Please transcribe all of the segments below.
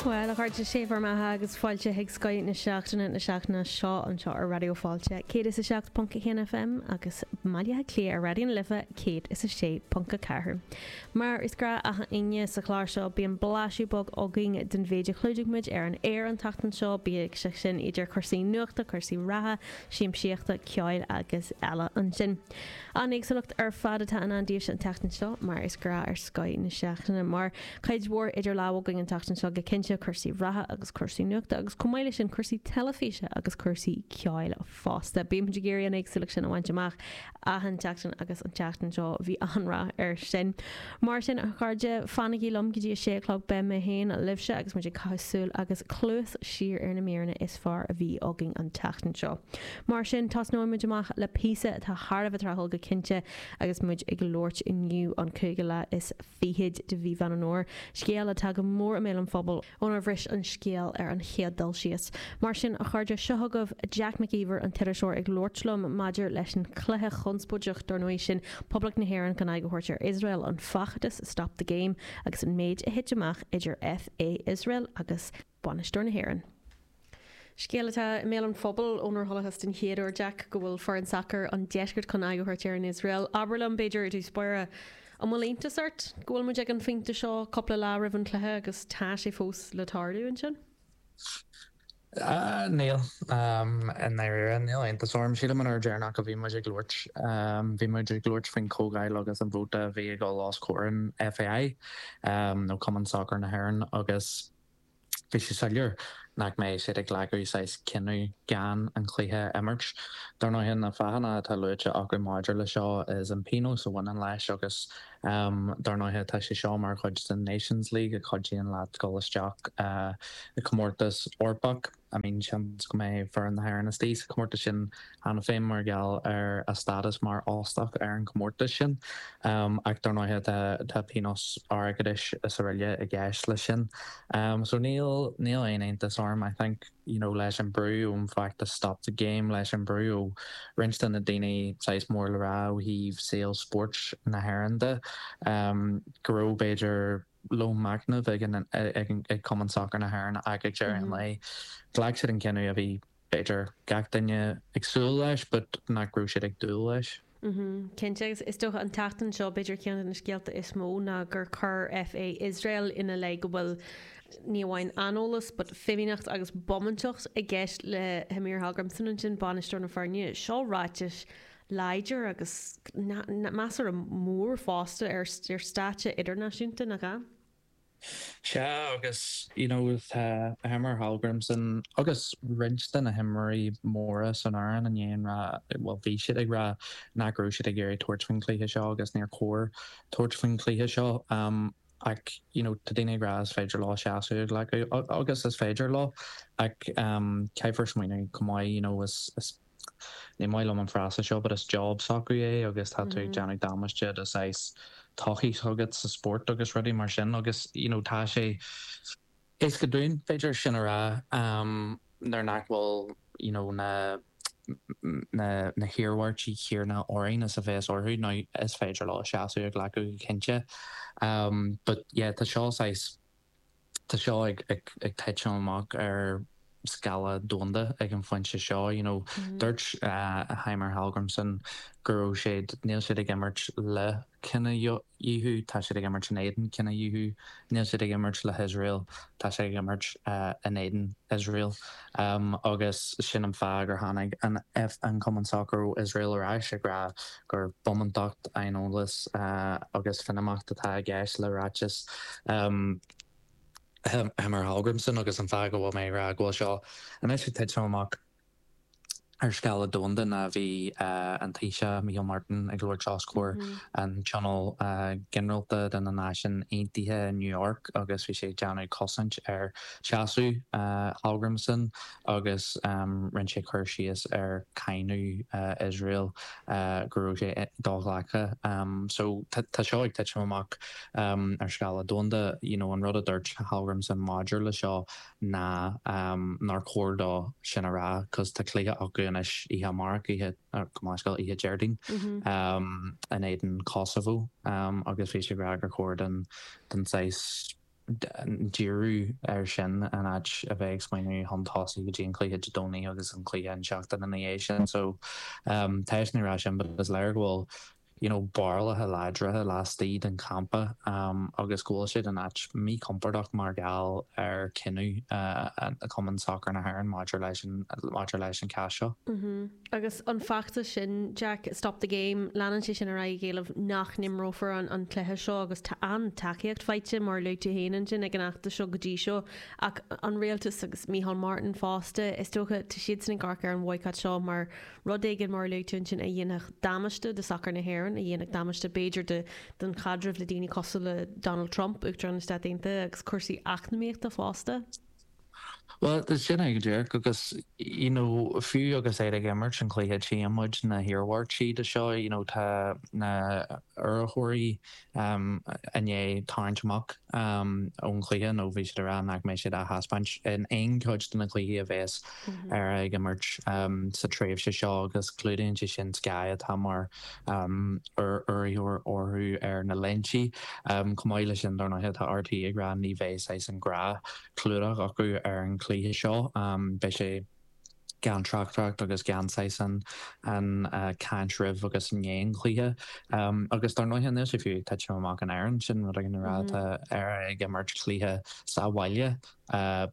Bhuel, a chairde, sé bhur mbeatha agus fáilte chuig Scoith na Seachtaine na seachtaine seo anseo ar Raidió Fáilte 107.1 FM agus i mBaile Átha Cliath ar Raidió na Life 106.4. Mar is gnáth achan Aoine sa chlár seo bíonn blaiseadh beag againn den mhéid a chlúdaigh muid ar an aer an tseachtain seo, bíodh sé sin idir cúrsaí nuachta, cúrsaí reatha, siamsaíochta, ceoil agus eile. Ansin. An éagsúlacht ar fad atá i ndán daoibhse an tseachtain seo, mar is gnáth ar Scoith na Seachtaine, mar cuid mhór idir lámha againn an tseachtain seo go cinnte, cúrsaí reatha agus cúrsaí nuachta, agus chomh maith leis sin, cúrsaí teilifíse agus cúrsaí ceoil fosta. Bímid ag iarraidh an éagsúlacht sin a bhaint amach achan tseachtain agus an tseachtain seo bhí an-rath air sin. Mar sin, a chairde, fanaigí liom go dtí a sé a chlog, beidh mé féin libhse agus muid ag caitheamh súil agus cluas siar ar na míreanna is fearr a bhí againn an tseachtain seo. Mar sin, tosnóidh muid amach le píosa atá thar a bheith tráthúil go cinnte agus muid ag labhairt inniu, an cúigiú lá is fichid de mhí Mheán Fómhair, scéal atá go mór i mbéal an phobail, ónar bhris an scéal ar an chéad dul síos. Mar sin, a chairde, seo chugaibh Jack Mac Íomhair, an t-iriseoir, ag labhairt liom maidir leis an chluiche chonspóideach, dár ndóigh, sin, Poblacht na hÉireann chun aghaidh a thabhairt ar Iosrael, an feachtas Stop the Game agus an méid a thit amach idir FA Iosrael agus bainisteoir na hÉireann. Scéal atá i mbéal an phobail ónar chualathas den chéad uair, Jack, go bhfuil foireann sacair an deiscirt chun aghaidh a thabhairt ar an Iosrael. Abair liom, b'fhéidir, i dtús báire, an bhfuil iontas ort go bhfuilimid ag an phointe seo, cúpla lá roimh an chluiche, agus tá sé fós le tarlú ansin? Níl, i ndáiríre. Níl iontas orm. Sílim an uair dheireanach a bhí muid ag labhairt, bhí muid ag labhairt faoin chomhdháil agus an vóta a bhí ag dul os comhair an FAI, nó Cumann Sacair na hÉireann, agus, Bhí sé soiléir nach mbeidh siad ag glacadh saghas cinneadh gan an cluiche a imirt. Dar ndóigh, na fáthanna atá luaite acu maidir le seo is an pionós a bhaineann leis agus dar ndóigh tá sé seo mar chuid den Nations League a chuidíonn leat dul isteach i comórtas Eorpach. I mean, seans go mbeidh foireann na hÉireann istigh sa chomórtas sin cheana féin mar gheall ar a stádas mar óstach ar an gcomórtas sin, ach dár ndóighe tá pionós airgeadais is araile i gceist leis sin. So níl níl aon iontas orm, I think, you know, leis an brú ón bhfeachtas Stop the Game, leis an brú ó roinnt de na daoine saghas mór le rá ó thaobh saol spóirt na hÉireann de, go raibh b'fhéidir, lón machnaimh ag Cumann Sacair na hÉireann ach ag deireadh an lae. Ghlac siad an cinneadh a bhí, b'fhéidir, gach duine ag súil leis, but nach raibh siad ag dúil leis. Cinnte, agus is dócha an tseachtain seo, b'fhéidir, ceann de na scéalta is mó ná gur chuir FA Iosrael ina leith go bhfuil ní amháin aineolas but fimíneacht agus bómántacht i gceist le Heimir Hallgrímsson ansin, bainisteoir na foirne. Seo ráiteas láidir agus measartha mór fosta ar stáitse idirnáisiúnta, nach bhfuil? Sea, agus you know tá Heimir Hallgrímsson agus roinnt de na himreoirí móra san fhoireann i ndiaidh an rá, bhuel bhí siad ag rá nach raibh siad ag iarraidh tabhairt faoin chluiche seo agus níor chóir tabhairt faoin chluiche seo ach you know tá daoine ag rá is féidir leo seasamh a ghlacadh agus is féidir leo ach caithfear smaointiú chomh maith you know is ní maith liom an frása seo, but is job s'acu é agus tá tú ag déanamh damáiste do saghas todhchaí s'agat sa spórt agus rudaí mar sin agus you know tá sé éasca dúinn, b'fhéidir, sin a rá nuair nach bhfuil you know na na na hiarmhairtí céanna orainn is a bheas orthu. Now is féidir leo seasamh a ghlacadh go cinnte but yeah tá seo saghas tá seo ag titim amach ar scála domhanda ag an phointe seo you know dúirt Heimir Hallgrímsson go raibh siad níl siad ag imirt le cinedhíothú tá siad ag imirt in éadan cinedhíothú níl siad ag imirt le hIosrael tá siad ag imirt in éadan Iosrael Um agus sin an fáth gur tháinig an Cumann Sacair ó Iosrael ar ais ag rá gur bomantacht, aineolas agus fimíneacht atá i gceist le ráiteas Heimir Hallgrímsson agus an fáth go bhfuil mé ag rá go bhfuil seo anois ag titim amach. Ar scála domhanda ná bhí an Taoiseach Micheál Martin ag labhairt os comhair an Tionól Ginearálta de na Náisiúin Aontaithe i New York agus bhí sé ag déanamh cosaint ar sheasamh Hallgrímsson agus rinne sé cur síos ar cáineadh Iosrael go raibh sé do-ghlactha. So tá seo ag titim amach ar scála domhanda. You know an rud a dúirt Hallgrímsson maidir le seo ná nár chóir dó sin a rá cos tá cluiche acu anois oíche amárach, oíche, gabh mo leithscéal, oíche Déardaoin, in éadan Kosovo agus bhí sé ag rá gur chóir don don saghas díriú air sin in áit a bheith ag smaointiú chun tosaigh go dtí an cluiche Dé Domhnaigh agus an cluiche an tseachtain ina dhiaidh sin so, tá sé ag rá sin but is léir go bhfuil you know barúlacha láidre laistigh den champa agus go bhfuil siad in áit míchompordach mar gheall ar cinneadh Cumann Sacar na hÉireann maidir leis an maidir leis an cás seo. Mm-hmm. Agus an feachtas sin, Jack, Stop the Game, leanann sé sin ar aghaidh ag éileamh nach n-imreofar an an cluiche seo agus tá an-tacaíocht faighte, mar a luaigh tú féin ansin, ag an fheachtas seo go dtí seo. Ach an rialtas agus Micheál Martin fosta, is dócha, tá siadsan ag amharc ar an bhoycott seo mar, Rud éigin mar a luaigh tú ansin a dhéanfadh damáiste do sacar na hÉireann, a dhéanfadh damáiste b'fhéidir don chaidreamh le daoine cosúil le Donald Trump, Uachtarán na Stát Aontaithe, agus cúrsaí eacnamaíochta fosta. Bhuel, sin é go díreach, agus you know fiú agus iad ag imirt sa chluiche tchíonn muid na hiarmhairtí de seo, you know tá na hurraitheoirí i ndiaidh tarraingt amach ón gcluiche nó bhí siad ag rá nach mbeidh siad á thaispeáint in aon chuid de na cluichí a bhéas ag imirt sa tréimhse seo agus clúdaíonn sé sin Sky atá mar urraitheoir orthu ar na léintí. Chomh maith le sin dár ndóighe tá RTÉ ag rá ní bheidh saghas an ghnáthchlúdach acu ar an gcluiche seo. Beidh sé. gan tráchtaireacht agus gan saghas an chaint roimh agus i ndiaidh an chluiche. Agus dár ndóighe anois fiú ag titim amach in Éirinn, sin rud éigin a rá, tá Éire ag imirt cluiche sa bhaile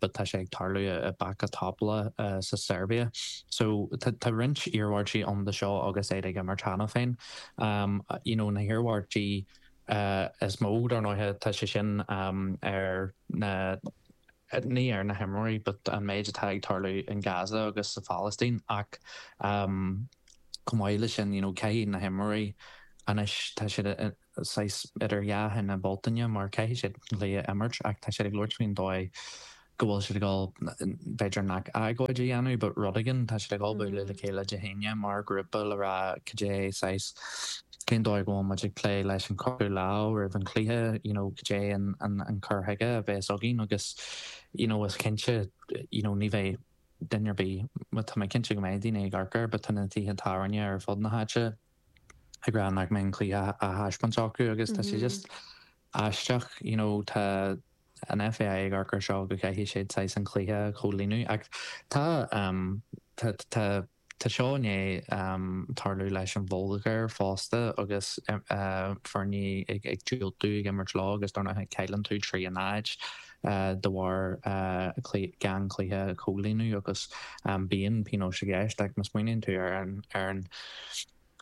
but tá sé ag tarlú i Bačka Topola sa Seirbia. So tá roinnt iarmhairtí ann do seo agus iad ag imirt cheana féin. You know, na hiarmhairtí is mó, dar ndóighe, tá sé sin ar na, ní ar na himreoirí, but an méid atá ag tarlú in Gaza agus sa Phalaistín ach chomh maith leis sin, you know, caithfidh na himreoirí anois, tá siad saghas idir dhá thine Bhealtaine mar caithfidh siad an cluiche a imirt ach tá siad ag labhairt faoin dóigh go bhfuil siad ag dul, b'fhéidir nach agóid a dhéanamh, but rud éigin, tá siad ag dul bualadh le chéile Dé hAoine mar ghrúpa le rá cad é saghas, cén dóigh a mbeidh muid ag plé leis an chroitheadh lámh roimh an chluiche, you know, cad é an an cur chuige a bhéas againn agus, you know, is cinnte, you know, ní bheidh duine ar bith, but tá mé cinnte go mbeidh daoine ag amharc air, but tá na tithe tábhairne ar fud na háite ag rá nach mbeidh an cluiche á thaispeáint acu agus tá sé just aisteach, you know, tá. an FAI ag amharc ar seo go gcaithfidh siad saghas an cluiche a chomhlíonadh ach tá tá tá seo i ndiaidh tarlú leis an Bhulgáir fosta agus foirne ag ag diúltú ag imirt leo agus dar ndóigh cailleann tú trí náid de bharr gan cluiche a chomhlíonadh agus bíonn pionóis i gceist ach má smaoiníonn tú ar an ar an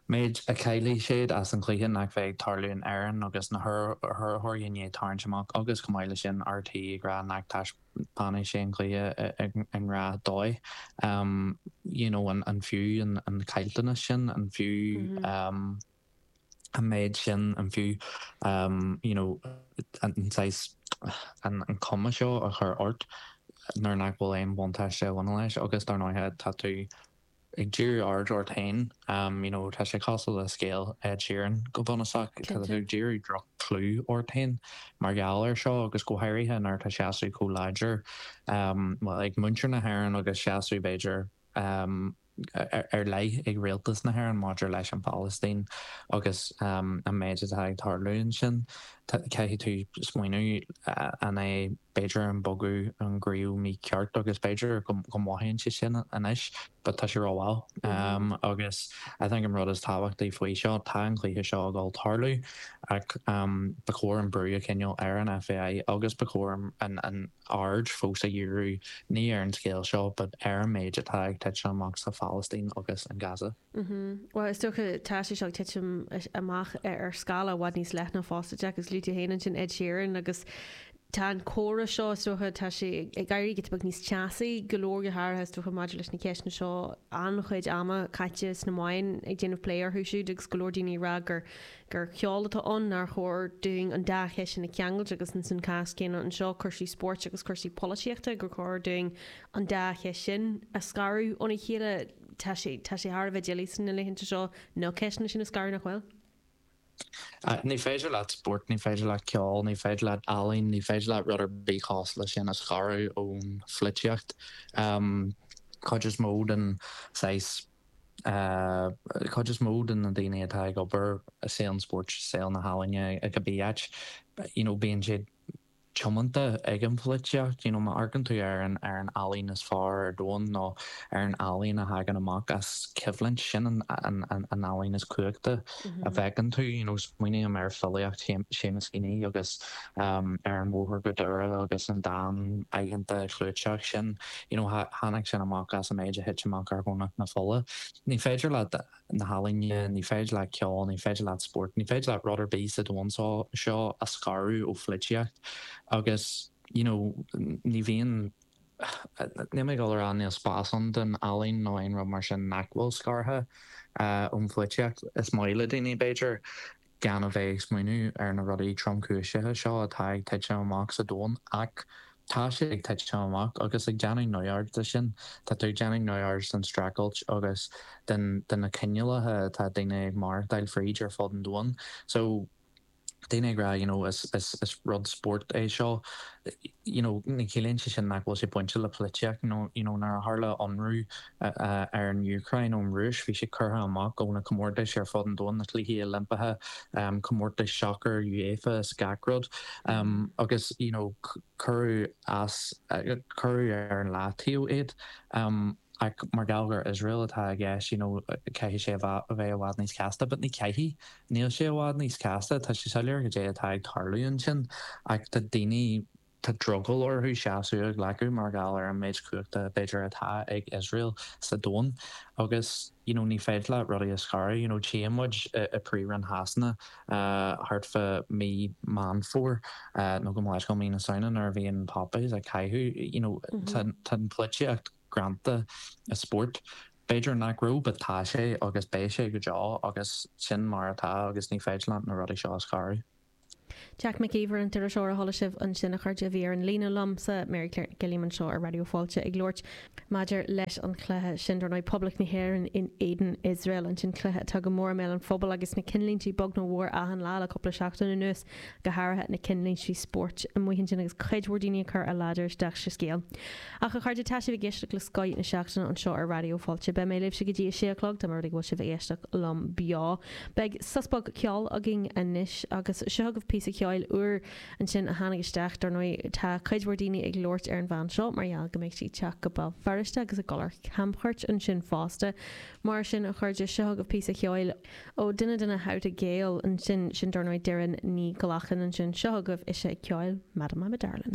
méid a chaillfidh siad as an gcluiche nach bheidh ag tarlú in Éirinn agus na hurraitheoirí i ndiaidh tarraingt amach agus chomh maith leis sin RTÉ ag rá nach dtaispeánfaidh sé an cluiche sa ghnáthdhóigh you know an fiú an caillteanas sin an fiú an méid sin an fiú you know an saghas an cuma seo a chur ort nuair nach bhfuil aon bhuntáiste a bhaineann leis agus dar ndóighe tá tú ag díriú aird ort féin you know tá sé cosúil le scéal Ed Sheeran go bunúsach, tá tú ag díriú droch-chlú ort féin mar gheall air seo agus go háirithe nuair atá seasamh chomh láidir bhuel ag muintir na hÉireann agus seasamh b'fhéidir ar leith ag rialtas na hÉireann maidir leis an Phalaistín agus an méid atá ag tarlú ansin, caithfidh tú smaoineamh an é. b'fhéidir an bogadh iontach mícheart agus b'fhéidir go mothaíonn sé sin anois but tá sé ró-mhall agus I think an rud is tábhachtaí faoi seo, tá an cluiche seo ag gabháil tarlú ach ba chóir an brú a choinneáil ar an FAI agus ba chóir an aird fós a dhíriú ní ar an scéal seo but ar an méid atá ag titim amach sa Phalaistín agus in Gaza. Bhuel is dócha tá sé seo ag titim amach ar scála i bhfad níos leithne fosta Jack, is luaigh tú féin ansin Ed Sheeran agus Tá an comhrá seo, is dócha, tá sé ag éirí giota beag níos teasaí, go leor go háirithe, is dócha, maidir leis na ceisteanna seo, an-chuid ama caite sna meáin ag déanamh plé orthu siúd agus go leor daoine ag rá gur gur ceol atá ann, nár chóir dúinn an dá cheist sin a cheangailt agus ins an cás céanna anseo, cúrsaí spóirt agus cúrsaí polaitíochta, gur chóir dúinn an dá cheist sin a scaradh óna chéile. Tá sé, tá sé thar a bheith doiligh sna laethanta seo na ceisteanna sin a scaradh, nach bhfuil? Ní féidir leat spórt, ní féidir leat ceol, ní féidir leat ealaín, ní féidir leat rud ar bith cosúil leis sin a scaradh ón pholaitíocht. Cuid is mó den saghas, cuid is mó de na daoine atá ag obair i saol an spóirt, saol na healaíne, i cibé áit, you know, bíonn siad, tiomanta ag an pholaitíocht, you know má amharcann tú ar an ar an ealaín is fearr ar domhan nó ar an ealaín a thagann amach as coimhlint, sin an an an an ealaín is cumhachtaí a bhfeiceann tú. You know smaoiním ar filíocht Seamus Heaney agus ehm Ar an Bhóthar go Doire agus an dán iontach clúiteach sin, you know tháinig sin amach as an méid a thit amach ar Dhomhnach na Fola. Ní féidir leat na healaíne, ní féidir leat ceol, ní féidir leat spórt, ní féidir leat rud ar bith sa domhan seo a scaradh ó pholaitíocht agus you know ní bhíonn, níl mé ag gabháil a rá níl spás ann don ealaín nó aon rud mar sin nach bhfuil scartha ón pholaitíocht, is maith le daoine b'fhéidir gan a bheith ag smaoineamh ar na rudaí tromchúiseacha seo atá ag titim amach sa domhan, ach tá siad ag titim amach, agus ag déanamh neamhaird de sin, tá tú ag déanamh neamhaird den streachailt agus de na coinníollacha atá daoine ag maireachtáil fríd ar fud an domhain. So, daoine ag rá, you know, is, is, is rud spóirt é seo, you know, ní chiallaíonn sé sin nach bhfuil sé bainte le polaitíocht, you know, nuair a tharla ionradh, ar an Úcráin ón Rúis. Bhí sé curtha amach as na comórtais ar fud an domhain, na Cluichí Oilimpeacha, comórtais sacair UEFA is gach rud, agus you know cuireadh as, cuireadh ar an leataobh iad. Ach mar gheall gur Iosrael atá i gceist you know caithfidh sé a bheith i bhfad níos casta, but ní chaithfidh, níl sé i bhfad níos casta, tá sé soiléir cad é atá ag tarlú ansin ach tá daoine, Tá drogall orthu seasamh a ghlacadh mar gheall ar an méid cumhachta b'fhéidir atá ag Iosrael sa domhan agus you know ní féidir leat rudaí a scaradh. You know téann muid i Príomhroinn Shasana thart fá mí Meán Fómhair nó go mall mí na Samhna nuair a bhíonn poppies á gcaitheamh you know tá an pholaitíocht greanta i spórt. B'fhéidir nach raibh but tá sé agus beidh sé go deo agus sin mar atá agus ní féidir leat na rudaí seo a scaradh. Jack Mac Íomhair An t-iriseoir a chuala sibh ansin a chairde a bhí ar an líne liomsa Mary Claire Nic Uilliam anseo ar Raidió Fáilte ag labhairt maidir leis an chluiche sin dar ndóigh Poblacht na hÉireann in éadan Iosrael ansin cluiche atá go mór i mbéal an phobail agus na cinnlíntí beag nó mór achan lá le cúpla seachtain anuas go háirithe na cinnlíntí spóirt amuigh ansin agus cuid mhór daoine ag cur a ladair isteach sa scéal. Ach, a chairde, tá sibh ag éisteacht le Scoith na Seachtaine anseo ar Raidió Fáilte. Beidh mé libhse go dtí a sé a chlog, dá mba rud é go bhfuil sibh ag éisteacht liom beo. Beidh sos beag ceoil againn anois, agus seo chugaibh píosa ceoil úr ansin a tháinig isteach. Dar ndóigh, tá cuid mhór daoine ag labhairt ar an bhean seo mar gheall go mbeidh sí ag teacht go Béal Feirste agus ag dul ar chamchuairt ansin fosta. Mar sin, a chairde, seo chugaibh píosa ceoil ó dhuine de na How to Gael ansin, sin, dar ndóigh, Doireann Ní Ghlacáin ansin. Seo chugaibh ise ag ceol, Madam I'm a Darlin'.